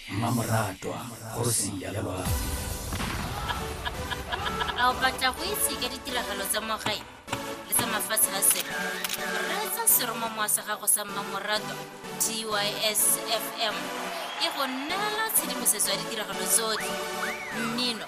mmamoratwa kgosi ya loapi a o batla go itse ka ditiragalo tsa mo gae le tsa mafatshe a sele reetsa seromamowa sa gago sa mmamoratwa tys fm e go neela tshedimosetso ya ditiragalo tsotlhe mmino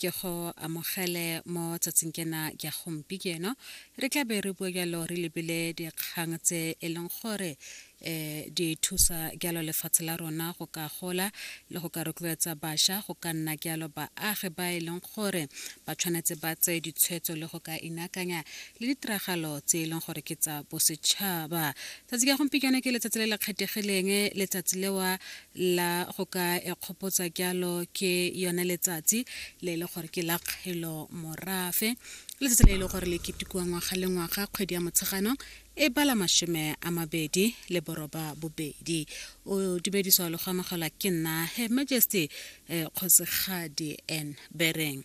ke go amogele mo tsatsing kena kya gompieno re tla be re bua jalo re lebile dikgang tse e leng gore um di thusa jalo lefatshe la rona go ka gola le go ka rotloetsa bašwa go ka nna jalo baagi ba e leng gore ba tshwanetse ba tseye ditshwetso le go ka inakanya le ditiragalo tse e leng gore ke tsa bosetšhaba tsatsi ka gompieno ke letsatsi le le kgethegileng letsatsi lewa la go ka ekgopotsa kyalo ke yone letsatsi le e le gore ke la kgelo morafe letsatsi le e le gore le ketekiwa ngwaga le ngwaga kgwedi ya motshegano e bala mashome a mabedi le boroba bobedi o dumediswa le go amogelwa ke nna her majesty eh, kgosigadi n bereng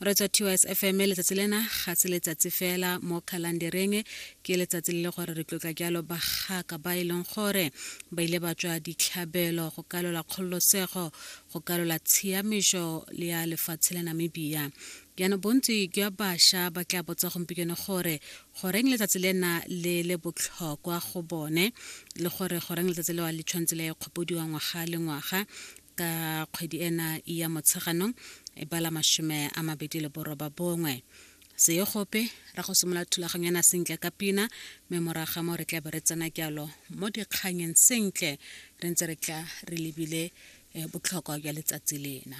re tswa tys fm letsatsi lena ga se letsatsi fela mo khalandereng ke letsatsi le le gore re tlotla jalo bagaka ba e leng gore ba ile ba tswa ditlhabelo go kalola kgololosego go kalola tshiamišo le ya lefatshe la namibia jaanong bontsi jwa bašwa ba tla botsa gompieno gore goreng letsatsi lena le le botlhokwa go bone le gore goreng letsatsi lewa le tshwanetse le kgopodiwa ngwaga le ngwaga ka kgwedi ena ya motsheganong e bala mashome a mabedi le boroba bongwe seye gope ra go simolola thulaganyo ena sentle ka pina mme moraga mo re tla be re tsena jalo mo dikganyeng sentle re ntse re tla re lebile eh, botlhokwa jwa letsatsi lena